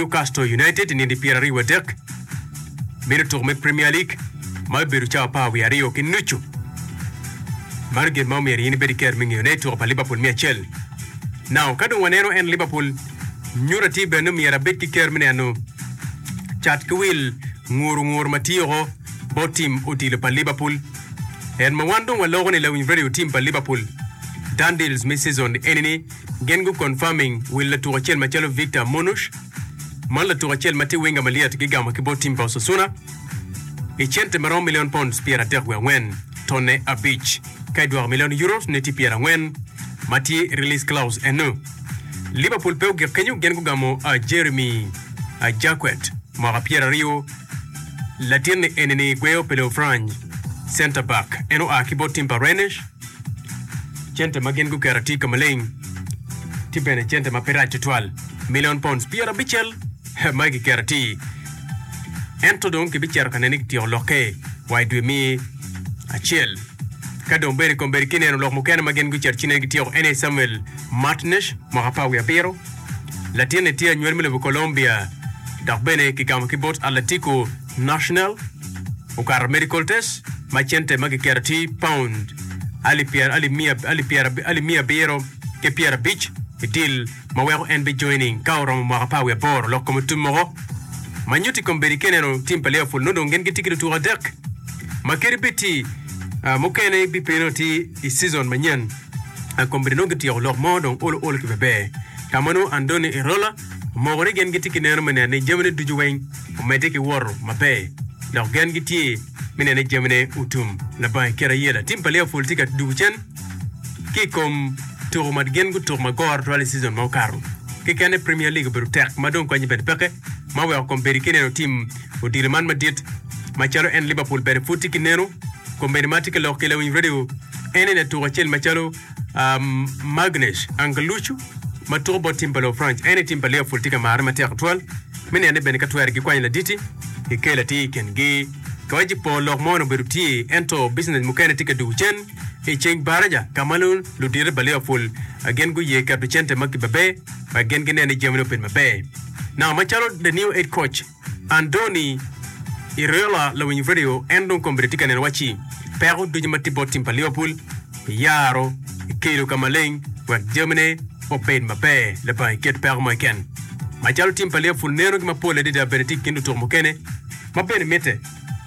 Newcastle United i nindi pyera aryo wa dek me lutuku me Premier League ma bibedo cawa apar wiye aryo ki nucu. Mano gin ma omyero in ibed ki ker me ngeyo ne i tuku pa Liverpool me acel. Now, ka dong waneno en Liverpool, nyuta tye bene ni myero abed ki ker me neno cat ki wil nguru nguru ma tye oko bot tim odilo pa Liverpool. En ma wan dong waloko ni Lawiny Radio tim pa Liverpool, Dundills me season eni ni, Gin gu confirming wil latuk acel macalo Victor Munush, man latuk acel ma tye winga malyet gigamo ki bot tim pa Osasuna i cente maromo million pounds pyer adek wiye angwen, tonne abic, ka i dwoko million euros ne tye pyer angwen ma tye release clause enu. Liverpool pe ogik kenyo gin gugamo a Jeremy a Jacquet, mwaka pyer aryo, latinni enini gweyo pe loyo Frany, center back, en oa ki bot tim pa Rennes. Cente ma gin guketo tye ka maleng, tye bene cente ma pe rac tutwal, milion pounds pyerabicel ma i kiketo atir. Ento dong kibicito ka nene ni kityeko lokke wa i dwe me acel. Ka dong bedo i kom bedo kineno lok mukene ma gin gucito ci nene gityeko ene Samuel Martinez, mwaka apar wiye abiro. Latinne tye anywali me lobo Colombia dok bene kigamo ki bot Atletico National, okato medical test ma cente ma giketo tye paund alip pyera alip miya alip pyera alip miya abiro ki pyera abic i deal ma weko en bi joining ka oromo mwaka apar wiye aboro lok kome tum moko ma nyuto i kom bedo i kene eno tim pa Liverpool nongo dong gin gitye ki lutuku adek ma kadi bed tye ah, mukene bi piny nongo tye i season manyen ah, kom bedo nongo gityeko lok mo dong olo olo ki beber ka ma nongo Andoni Irola omoko ni gin gitye ki neno me neno ni jamine ducu weng omedde ki woto maber dok gen gitye me neno ni jamine otum labang i kite ayela. Tim pa Liverpool tye ka dwogo cen ki i kom tuko ma gin gutuko ma goro twal i cizon ma okato. Kekene Premier League obedo tek ma dong kwanyi bene peke ma weko kombedi ki neno tim odilo man madit macalo en Liverpool bene pud tye ki neno. Kombedi ma atye ka loko ki lawiny radio en eni atuka acel macalo Magnus Angelucci ma tuko bot tim pa Lufranc en i tim pa Liverpool tye ka marre matek tutwal me neno ni bene ka twero gikwanyo laditi gikel atir i kingi. Ka waci pol lok mono obedo tye ento bicnec mukene tye ka dugo cen i ceng baraca ka ma nongo ludito pa Liverpool gin guye keto cente ma kibabe wek gin ginen ni jamine obedo maber. Naka macalo The New Head Coach Andoni, Iriola lawiny redio en dong kombedde tye ka neno wacci peko ducu ma tye bot tim pa Liverpool iyaro kelo ka maleng wek jamine obed maber labongo i kit peko mo keken. Macalo tim pa Liverpool neno ki mapol adada bene tye i kin lutuku mukene ma bene mitte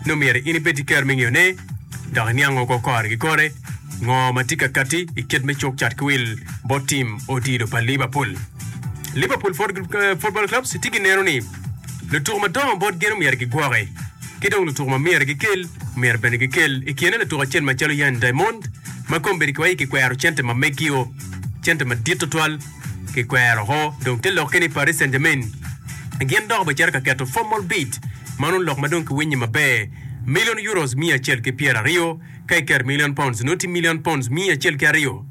nongo myero in ibed ki ker me ngeyo ne dok iniango oko kore ki kore ngo ma tye ka katti i kit me cuk cat ki wil bot tim odilo pa Liverpool. Liverpool Football Club tye ki neno ni lutuko madongo bot gin omyero gigwoki ki dong lutuko ma myero gikel omyero bene gikel i kine latuk acel macalo Yan Diamond ma kombedi ki wa i kikwero cente ma megio cente madit tutwal Kikwero oko dong te lokke ni Paris Saint-Germain. Gin dok obicito ka keto formal bid ma nongo lok ma dong kiwinyo maber, million euros miya acel ki pyera aryo, ka iketo million pounds nongo tye million pounds miya acel ki aryo.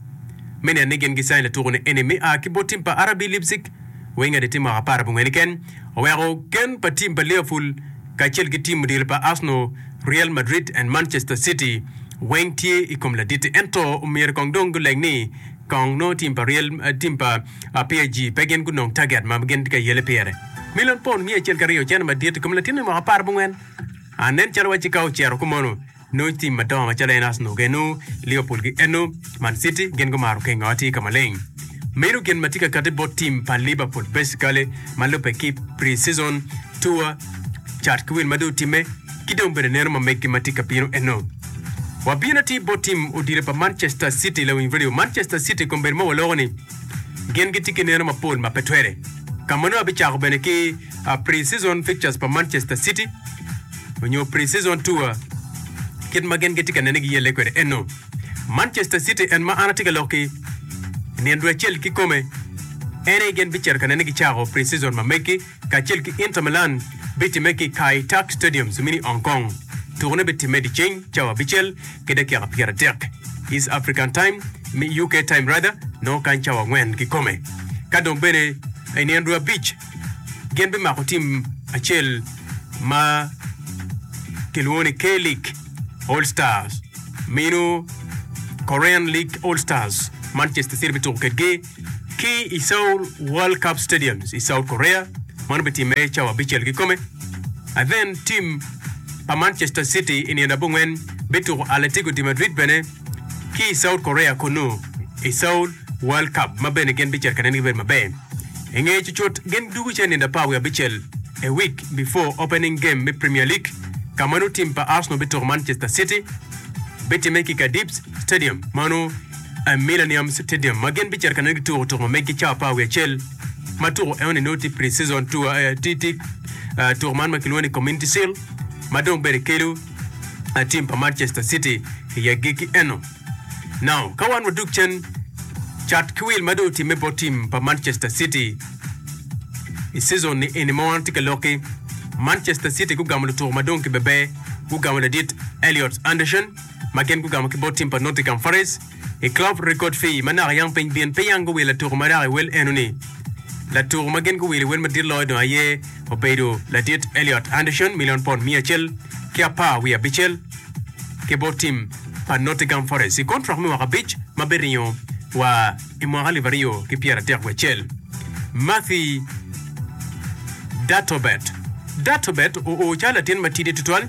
Me neni gin gi sign latuku ni eni me a ki bot tim pa RB Leipzig, Wenger di timo mwaka apar abongwen keken, oweko gen pa tim pa Liverpool kacel ki tim odilo pa Arsenal, Real Madrid and Manchester City weng tye ikom laditi ento omyero kong dong guleng ni Kong nongo tim pa ryel, tim pa PSG pe gin gunong target ma gin tye ka yele pire. Million pound miya acel ki aryo ocene madit i kom latin me mwaka apar bongwen. An nen calo wacci ka ocero ku mono, nongo tim madongo macalo en Arsenal genu, Liverpool gi enu, Man City gin gumaro kengo atir ka maleng. Meno gin ma tye ka kati bot tim pa Liverpool basically ma lubbe ki pre-season, tour, cat ki win ma dong otimme ki dong bene neno ma meggi ma tye ka bino enu. Wabino ti bot tim odite pa Manchester City lawiny redio. Manchester City kombeddi ma waloko ni gin gitye ki neno mapol ma pe twere. Ka mano abicako bene ki pre-season fixtures pa Manchester City onyo pre-season tour kit ma gin gitye ka nene giyelle kwede eno. Manchester City en ma an atye ka lokki nino dwe acel kikome en aye gin bicito ka nene gicako pre-season ma meggi. kacel ki Inter Milan bitimme ki i Kai Tak Stadium i Sumini, Hong Kong. Tukone bitimme dyeceng, cawa abicel ki dakika pyeradek, East African Time, me UK Time rather, nongo kany cawa angwen kikome. Ka dong bene i nino dwe abic, gin bimako tim acel ma kilwongo ni K-League All Stars, meno Korean League All Stars, Manchester City bituko kedgi. ki i Seoul World Cup Stadium i South Korea. Man obitimme cawa abicel kikome. Athen tim pa Manchester City i nino abongwen bituko Atletico de Madrid bene ki i South Korea kunu i Seoul World Cup ma bene gin bicito ka nen gibedo maber. I nge cucut gin dugu ce nindo apar wiye abicel a week before opening game me Premier League ka ma nongo tim pa Arsenal bituko Manchester City. Bitimme ki i Cardiffs. Stadium, ma onongo aye Millennium Stadium, ma gin bicito ka nongo gituko tuko ma meggi cawa apar wiye acel, ma tuko enoni nongo tye pre-season tour, eh, tye tye ah, tuko man ma kilwongo ni Community Shield, ma dong bene kelo ah, tim pa Manchester City i agikki eno. Now, ka wan wadok cen, cat ki wil ma dong otimme bot tim pa Manchester City i season ni eni ma wan watye ka lokki, Manchester City gugamo lutuko ma dong kibebe, gugamo ladit Elliot Anderson, ma gin gugamo ki bot tim pa Nottingham Forest i Club Record Fee ma naka yam piny byen pe yam guwilo latuko maraya i wel eno-ni. Latuko ma gin guwilo i wel madit loyo dong aye obedo ladit Elliot Anderson milion pond miya acel ki apar wiye abicel ki bot tim pa Nottingham Forest i kontrak me mwaka abic ma biringo wa i mwaka alip aryo ki pyeratek wiye acel. Mathy Datobet Datobet oo calo latin matidi tutwal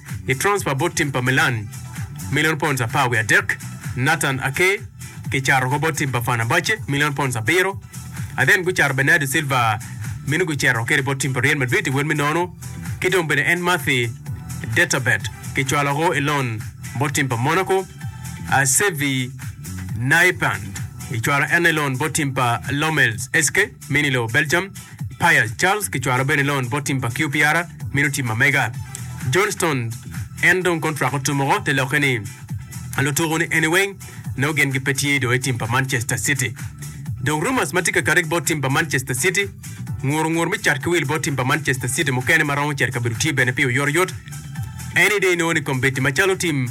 i transpa bot tim pa Milan, milion pounds apar wiye adek, Nathan Ake kicato woko bot tim pa Fenerbahce, milion pounds abiro, athen gucato Bernardo Silva meno gucito kwede bot tim pa Real Madrid i wel me nono, ki dong bene en Mathy Detabet kicwalo woko i lon bot tim pa Monaco, Asevi Naipand kicwalo en i lon bot tim pa Lommels SK. Min i lobo Belgium, Payal Charles kicwalo bene loan bot tim pa QPR mito tim ma mega. John Stones en dong kontrak otum woko te lokke ni lutuku ni eni weng nongo gin gipe tye do i tim pa Manchester City. Dong rumours ma tye ka kati bot tim pa Manchester City, nguru ngur me cat ki wil bot tim pa Manchester City mukene ma romo cito i kabedo tye bene pi oyotoyot. Eni dong inongo ni kombeddi macalo tim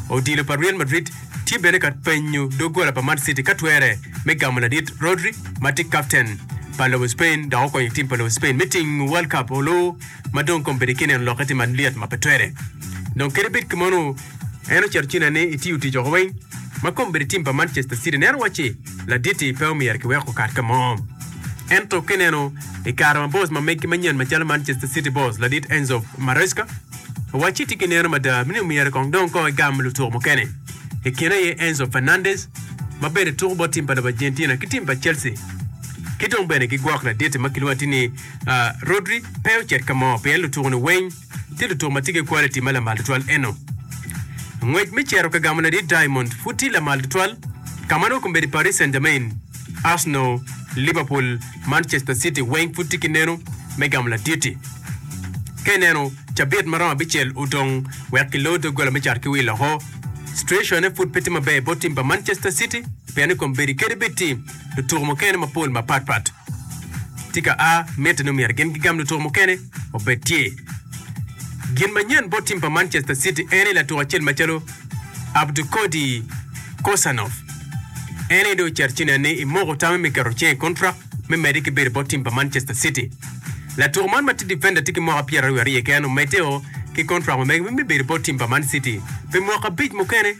odilo pa Real Madrid tye bene ka penyo doggola pa Man City ka twere me gamo ladit Rodri ma tye kapten pa lobo Spain dok okonyo tim pa lobo Spain me tingo World Cup olu ma dong kong bedi kineno lokke tye malyet ma pe twere dong kadi bed kemonu en ocito ci nene i tiyo tic oko weng ma kong bedi tim pa Manchester City neno wacci laditi pe omyero kiwek okat kamo ento kineno i kare ma boss ma megi manyen macalo Manchester City boss ladit Enzo Maresca Wacci tye ki neno mada ni myero kong dong kong egam lutuko mukene, i kine aye Enzo Fernandez ma bene tuko bot tim pa lobo Argentina ki tim pa Chelsea. Ki dong bene gigwok laditi ma kilwongo atir ni Rodri pe ocit ka mo pien lutuko-ni weng tye lutuko ma tye ki quality ma lamal tutwal eno. Ngwec me cito ka gamo ladit Diamond pud tye lamal tutwal, ka ma nongo kombeddi Paris Saint-Germain. Arsenal, Liverpool, Manchester City weng pud tye ki neno me gamo laditi. Ka ineno cabit ma romo abicel odong wek kiloo doggola me cat ki wil oko, situacone pud pe tye maber bot tim pa Manchester City pien ni kombeddi kede bed tye lutuku mukene mapol mapatpat tye ka a. Mitte ni myero gin gigam lutuku mukene obed tye. Gin manyen bot tim pa Manchester City en aye latuk acel macalo Abdukodi Kosanov, En aye dong ocito ci nene ni imoko tame me keto cing i kontrak me medde ki bedo i bot tim pa Manchester City. Latuko man ma tye difenda tye ki mwaka pyeraryo wiye aryo keken omedde-o ki kontrak ma mege me bedo i bot tim pa Man City pi mwaka abic mukene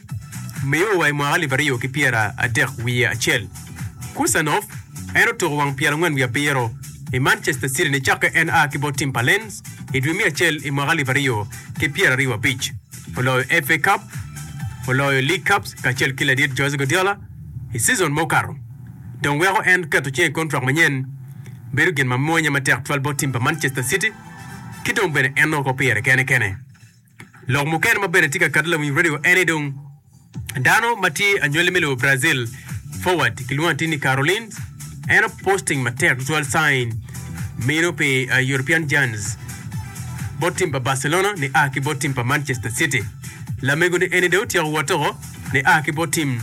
miyo wa i mwaka alip aryo ki pyeradek wiye acel. Kosanov, En otuko wang pyerangwen wiye abiro i Manchester City nicakke en a ki bot tim pa Lens i dwe me acel i mwaka alip aryo ki pyeraryo abic. oloyo FA Cup, oloyo League Cup kacel ki ladit Jose Guardiola i season ma okato, dong weko en keto cinge i kontrak manyen bedo gin ma mwanya matek twal bot tim pa Manchester City ki dong bene en nongo kop pire kene kene. Lok mukene ma bene tye ka kati lawiny radio ene dong, Dano ma tye anywali me lobo Brazil, forward kilwongo ni Tini Carolines, en oposting matek tutwal sign meno pi uh, European Giants bot tim pa Barcelona ni a ki bot tim pa Manchester City. Lamego ni eni dong otyeko wot oko ni a ki bot tim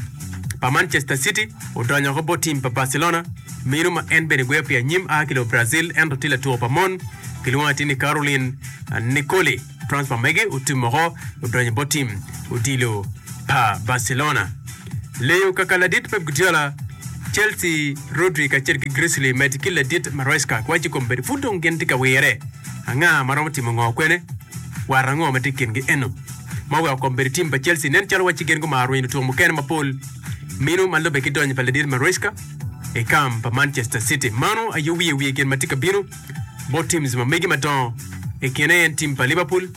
pa Manchester City odonyo oko bot tim pa Barcelona meno ma en bene gweyo pi anyim a ki lobo Brazil ento tye latuko pa mon kilwongo ni Tini Caroline uh, Nicoli. Transfer mege otum woko odonyo bot tim odilo pa Barcelona. Leyo kaka ladit Pep Guardiola, Chelsea, Rodri kacel ki Griezli med ki ladit Maresca kiwaco i kom bedo pud dong gin tye ka wire anga ma romo timo ngo kwene war ango ma tye i kingi eno ma oweko kom bedo tim pa Chelsea nen calo wacci gin gumaro rwenyo lutuko mukene mapol mino ma lube ki donyo pa ladit Maresca i kam pa Manchester City. Mano aye wiye wiye gin ma tye ka bino. bot teams ma mege madongo, i kine aye en team pa Liverpool,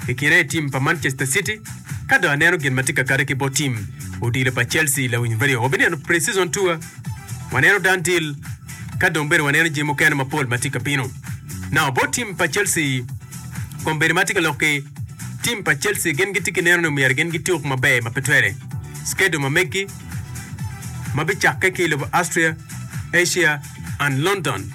i kine aye team pa Manchester City, ka dong aneno gin ma tye ka kade ki bot team odilo pa Chelsea lawiny radio. Wabineno pre-season tour, waneno done deal, ka dong bene waneno jami mukene mapol ma tye ka bino. Now bot team pa Chelsea, kombeddi ma tye ka lok ki team pa Chelsea gin gitye ki neno ni myero gin gituk maber ma pe twere. Schedule ma megi ma bicakke ki i lobo Austria, Asia and London.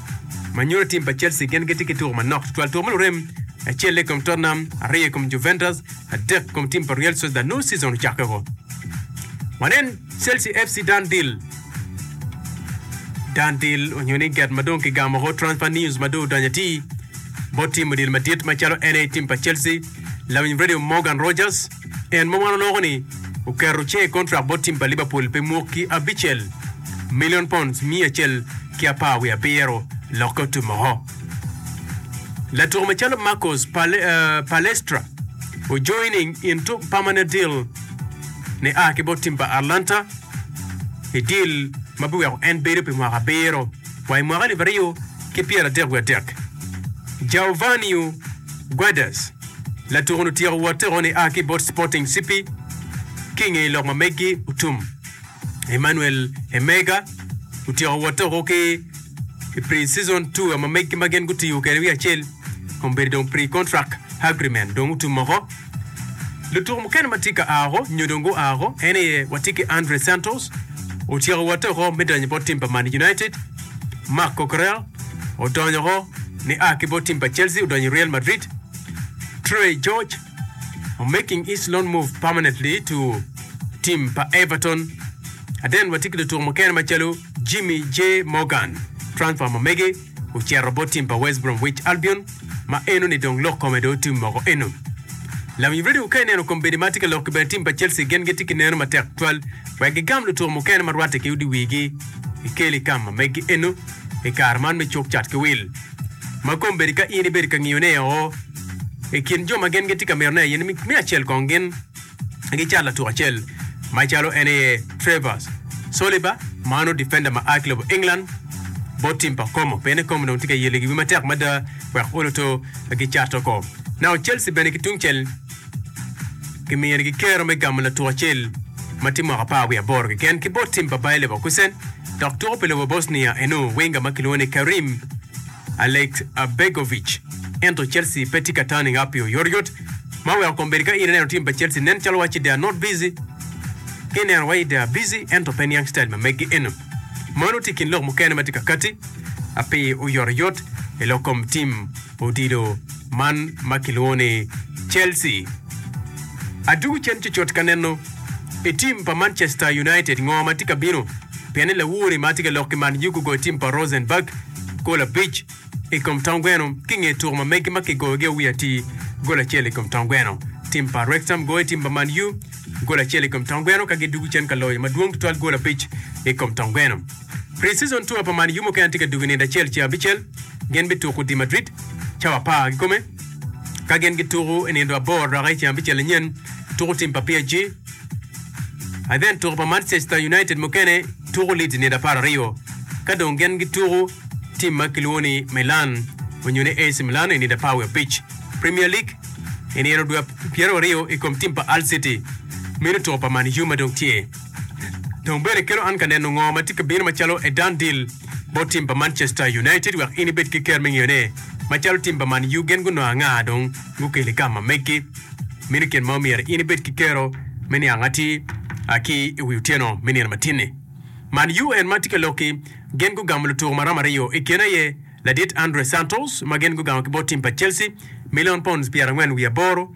ma nyuto tim pa Chelsea gin gitye ki tuko manok tutwal, tuko ma lurem acel i kom Tottenham, aryo i kom Juventus, adek i kom tim pa Real Sociedad nongo season ocakke woko. Wanen Chelsea FC Dan Deal Dan Deal onyo ni get ma dong kigamo woko transfer news ma dong odonyo atir bot tim odil madit macalo NA tim pa Chelsea, lawiny radio Morgan Rogers, En ma wan oloko ni oketo cinge i kontrak bot tim pa Liverpool pi mwaki abicel, milion pounds miya acel ki apar wiye abiro lokke otum oko. Latuku macalo Marcos Pal- eh, Palestra ojoining into permanent deal ni a ki bot tim pa Atlanta i deal ma biweko en bedo pi mwaka abiro wa i mwaka alip aryo ki pyeradek wiye adek. Giovanni Guedes Latuku-nu tyeko wotte o ni a ki bot Sporting CP ki i ngeye lok ma meggi otum. Emmanuel Emega otyeko wotte oko ki i pre-season tour ma meggi ma gin gutiyo kede wi acel kun bedo dong pre-contract agreement dong otum oko. Lutuku mukene ma tye ka a oko nyo dong gua oko en aye watye ki Andre Santos otyeko wotte oko me donyo bot tim pa Man United, Marc Coquerel, Odonyo woko ni a ki bot tim pa Chelsea odonyo i Real Madrid, Tre George o making his loan move permanently to tim pa Everton. Aden watye ki lutuko mukene macalo Jimmy J Morgan, transfer ma mege ocito bot tim pa West Bromwich Albion ma eno ni dong lok kome dong tim moko eno. Lawi radio ka ineno kombeddi ma tye ka lok ki bene tim pa Chelsea gen gitye ki neno matek twal wek gigam lutuko mukene ma rwatte ki odi wigi i Kelly Kam ma megi eno. i kare man me cuk cat ki wil, ma kombeddi ka in ibedo ka ngiyone oo. I kin jo ma gin gitye ka mito ne aye ni me acel kong gin gicat latuk acel macalo en aye Trevor Caliber ma onongo difenda ma a ki lobo England bot tim pa Como pienni Como dong tye ka yelo gigi matek mada wek oloto gicat oko. Nao Chelsea bene ki tungcel. Gimiyo nigi kero me gamo latuk acel ma tye mwaka apar wiye aboro keken ki bot tim pa Bayer Leverkusen dok tuko pi lobo Bosnia eno winga ma kilwongo ni Kerim Alekbegovic. Ento Chelsea pe tye ka tani ngapi oyotoyot ma weko kom bedo ka in ineno tim pa Chelsea nen calo waci they are not busy ki ineno waci they are busy ento pe niang style ma megi eno. Mano tye i kin lok mukene ma tye ka kati api oyotoyot i lok kom tim Odilo man ma kilwongo ni Chelsea. Adwogo cen cucut ka neno i tim pa Manchester United ngo ma tye ka bino pien ni lawori ma tye ka lok ki Man U gugoyo tim pa Rosenborg gol abic i kom tong gweno ki i nge tuko ma megi ma kigoyogi awiye atir gol acel i kom tong gweno. Tim pa Wrex Ham goyo tim pa Man U gol acel i kom tong gweno ka gidwogo cen ka loyo madwong tutwal gol abic i kom tong gweno. Pre-Season Tour pa Man U mukene tye ka dugo i nino acel ceng abicel. Gin bituko di Madrid cawa apar kikome ka gin gituko i nino aboro roka i ceng abicel anyen tuko tim pa PSG. I then tuko pa Manchester United mukene tuko Leeds i nino apar aryo ka dong gin gituko tim ma kilwongo ni Milan onyo ni AC Milan i nino apar wiye abic. Premier League i nino dwe pyeraryo i kom tim pa Hull City mino tuko pa Man U ma dong tye. Dong bene ikelo an ka neno ngo ma tye ka bino macalo a done deal bot team pa Manchester United wek in ibed ki ker me ngeyo ne macalo team pa Man U gen gunongo anga dong gukelo i kama megi. Meno kin ma omyero in ibed ki kero me niang atir a ki i wi otyeno me nino matinni. Man U en ma tye ka loki gen gugamo lutuko maromo aryo i kine aye ladit Andre Santos ma gen gugamo ki bot team pa Chelsea milion pounds pyerangwen wiye aboro,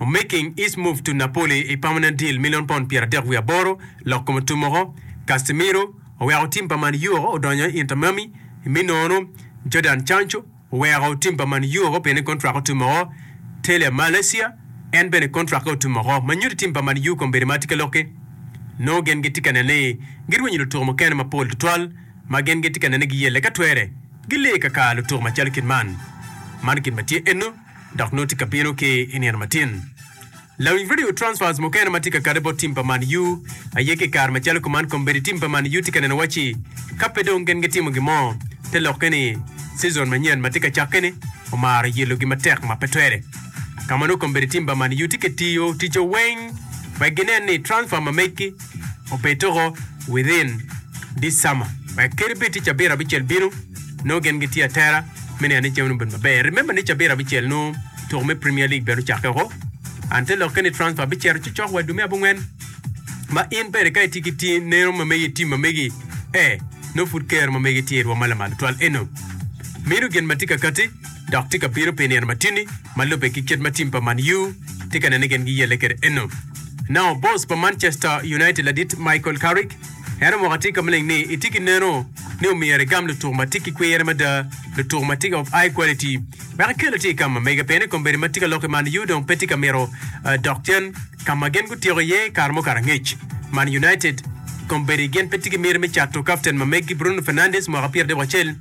O making his move to Napoli i permanent deal milion pond pyeradek wiye aboro, lok kome otummoko, Casemiro oweko tim pa Man Uo odonyo i Inter Miami, me nono, Jadon Cancho oweko tim pa Man Uo pien kontrake otummoko, Tele Malaysia en bene kontrake otummoko, ma nyuto tim pa Man U kombeddi ma tye ka lokke nongo gin gitye ka nene ni girwenyo lutuko mukene mapol tutwal ma gin gitye ka nene ni giyelle ka twere gilee ka ka lutuko macalo kit man. Man kit ma tye ennu. dok nongo tye ka bino ki i nino matin. Lawiny radio transfers mukene ma tye ka kade bot tim pa Man U aye ki i kare macalo kuman kombeddi tim pa Man U tye ka neno wacci ka pe dong gin gitimo gin mo te lokke ni cizon manyen ma tye ka cakke ni omaro yelogi matek ma pe twere. Ka ma nongo kombeddi tim pa Man U tye ka tiyo ticce weng wek ginen ni transfer ma megi obed tuko within this summer wek kadi bed tye cabit abicel bino nongo gin gitye atera me neno ni jami nongo obedo maber. Remember ni cabit abicel nongo tuko me Premier League bene ocakke woko and te lokke ni transfer bicito ci cok wa i dwe me abongwen ma in bene ka itye ki ti- neno ma megi i tim ma megi eh nongo pud kero ma megi tye i rwom ma lamal tutwal eno mino gin ma tye ka katti. dok tye ka bino pi nino matini ma lubbe ki kit ma tim pa Man U tye ka nene gin giyelle kwede eno. Now, boss pa Manchester United ladit Michael Carrick en omoko atika maleng ni itye ki neno ni omyero igam lutuku ma tye ki kwir mada, lutuku ma tye of high quality wek ikele ti i ka ma mege piene kombeddi ma tye ka lok i Man U dong pe tye ka mito dok cen ka ma gin gutyeko iye kare mukato angec. Man United kombeddi gin pe tye ki miti me cato kapten ma meggi Bruno Fernandes mwaka pyeraryo ki acel.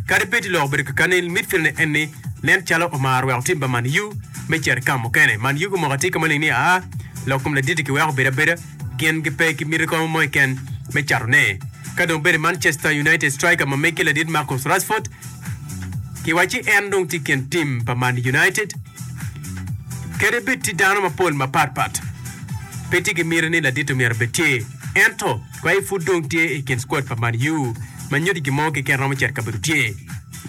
Kadi bed ni lok obedo kekani i midfieldne en ni nen calo omaro weko tim pa Man-U me cito i kam mukene. Man-U gumoko atika maling ni aa lok kom laditi giweko bedo abeda gin gipe ki miti kongo mo keken me catone. Ka dong bed ni Manchester United striker ma meggi ladit Marcus Rashford giwacci en dong tye i kin tim pa Man United, kadi bed tye dano mapol mapatpat, pe tye ki miti ni ladit omyero bed tye. Ento. Kwayi pud dong tye i kin squad pa Man U ma nyuti gin mo keken romo cito i kabedo tye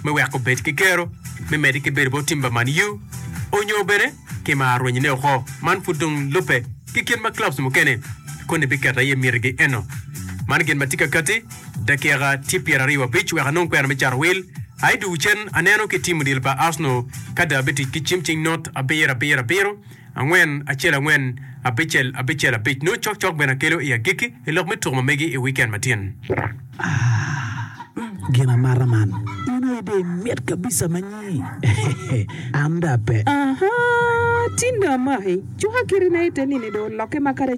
me weko obed ki kero me medde ki bedo bot tim pa Man U onyo bene ki ma arwenyone oko. Man pud dong lubbe ki kit ma clubs mukene koni biketo aye mitigi eno. Man gin ma tye ka kati, dakika tye pyeraryo abic wek anong kwena me cato wil. Aye dwogo cen aneno ki tim odilo pa Arsenal ka dong abitic ki cim cing not abiro abiro abiro. angwen acel angwen abicel abicel abic. Nongo cok cok bene akelo i agikki i lok me tuk ma megi i wikend matin. Aah gin amata man. In aye dong imit kabisa ma nyi an dong ape. Ahaa tinda amaki cuka kite na ite nini dong oloke ma kare.